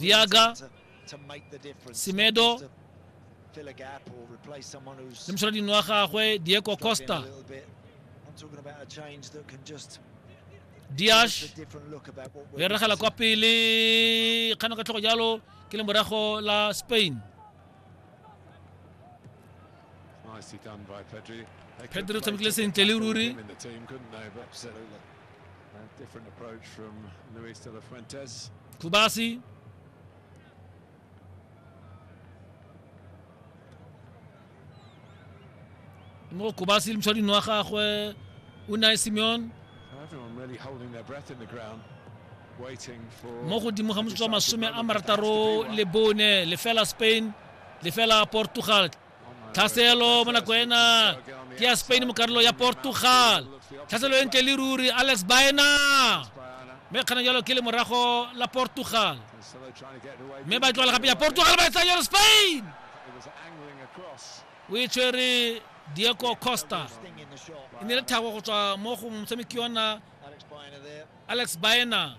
Diaga, Semedo, le moshwalading wa gagwe diego costa diash o eregela kwa pele kgano ka tlhogo jalo ke le morago la spain pedro o tshamekile sentle le ruri Kubasi. mo Kubasi le motshwading wa gagwe Unai Simeon mo godimo ga motsotso wa masome a marataro le bone lefela Spain lefela Portugal tlhaselo mo nako ena ke ya spain mo karolo ya portugal tlhaselo e ntle le ruri alex baena mme kgana jalo ke le morago la portugal mme ba tlogela gape ya portugal ba etsa jalo spain o e tshwere diego costa e ne le thago go tswa mo go motshameki yona alex baena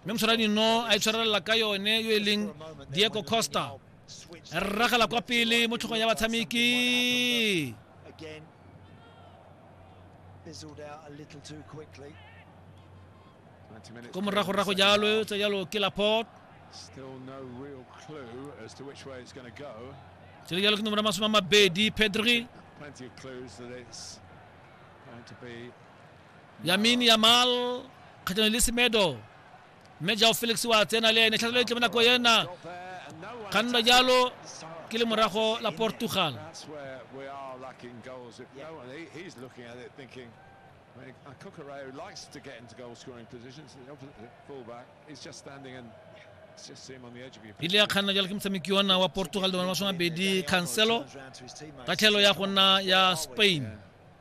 mme motshwaradi no a itshwarelela ka yone yo e leng diego costa a rragela kwa pele mo tlhogong ya batshameki ko moragorago jalo tse jalo ke laport tse jalo ke nomoro ya masome a mabedi pedri Yamin Yamal kgatlhanong le Semedo mme jao Felix wa tsena le ene tlhatlhelo e tle mo nako ena ga nna jalo ke le morago la Portugal Cucurao likes to get into goal scoring positions. The fullback is just standing and ile ya kganna jalo ke motshameki ona wa portugal le bone masome mabedi cancelo ka tlhelo ya go nna ya spain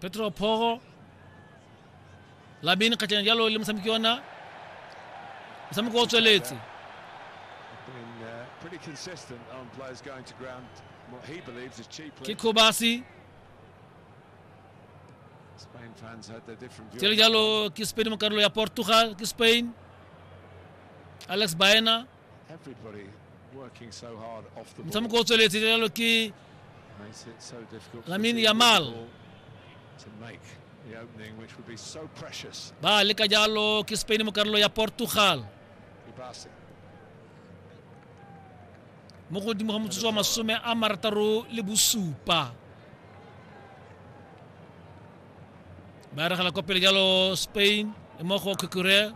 Petro Poro Labini kgatšana jalo le motshameki ona motshameko o tsweletse ke Kobasi tsele jalo ke Spain mo karolo ya Portugal ke Spain Alex Baena motshameko o tsweletse jalo ke lamin yamal ba leka jalo ke spain mo karolo ya portugal mo godimo ga motsotso wa masome a marataro le bosupa ba regela kwa pele jalo spain mmogo kukure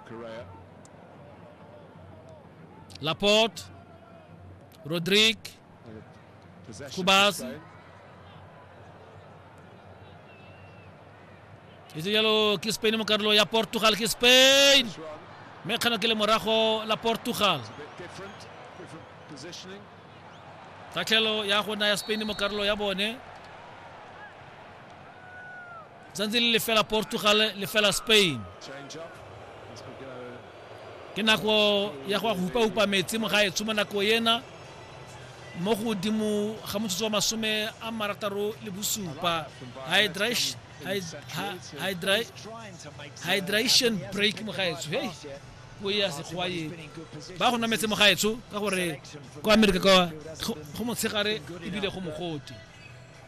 Laporte, Rodrigue, Kubasi. E se jalo ke Spain mo karolo ya Portugal ke Spain. Mme kgano ke le morago la Portugal. Tatlhelo ya go naya Spain mo karolo ya bone. Tsantsi le lefela Portugal lefela Spain. Ke nako ya go hupa-hupa metsi mo gaetsho mo nako ena mo godimo ga motsotso wa masome a marataro le bosupa hydration break mo gaetsho hei go ya sekgowa e ba go nwa metse mo gaetsho ka gore kwa amerika kwa go motshegare ebile go mogote